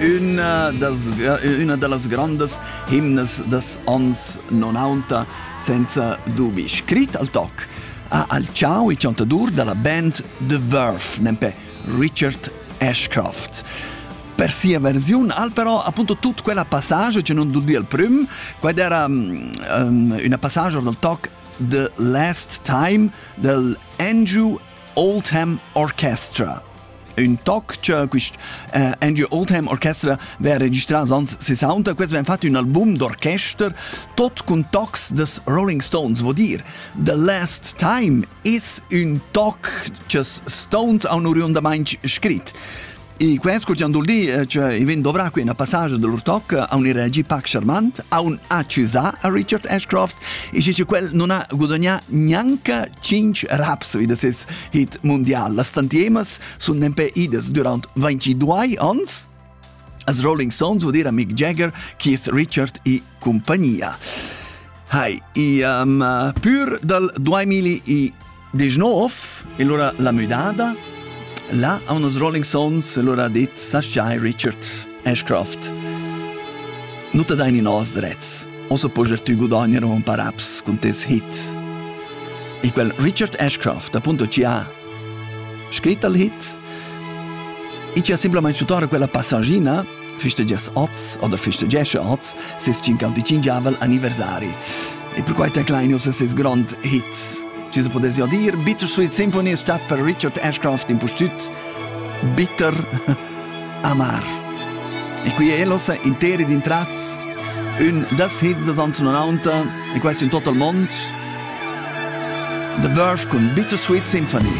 Üna, das, üna da las grandas himnas das ans 90 senza dubi. Scrit al toc ha al ciao i chantadur da la band The Verve, nempe Richard Ashcroft. Per sia versiun al però appunto tut quella passaggio che non dul di al prüm, quad era um, una passaggio dal toc The Last Time del Andrew All Time Orchestra. Ün toc cha quist uh, Andrew All Time Orchestra v'ha registrà ans 60, quels v'han fat ün album d'orchester tot cun tocs des Rolling Stones, vo dir. The Last Time es ün toc ch's Stones haun oriundamaing scrit. E quels che han dir che i vegn dovrà qui una passage de lur toc a un reagi pac charmant, a un accusà a Richard Ashcroft, e che quel non ha gudagnà neanche 5 raps da ses hit mundial. Las tantiemas sono nempe ides durant 22 ans, as Rolling Stones vuol dire a Mick Jagger, Keith Richard e compagnia. Hai, e um, pur dal 2000 Disch nov, e lura la müdada. Là han nos Rolling Stones e lura dit Sashay Richard Ashcroft. Nu te dain in os drets. Osa poger tü gudogner un par ups cun tes hits. E quel Richard Ashcroft, appunto, ci ha scrit al hit e ci ha semplicemente tutora quella passagina festegias oz oder festegesche oz ses 55 anniversari. E per quai teclaino se ses grand hits. Ci se potesse dir, Bitter Sweet Symphony ist statt per Richard Ashcroft in Pustüt Bitter Amar. E qui è los interi din tratts un das hits des 1990 e quasi in tot il mondo The Verve con Bittersweet Symphony.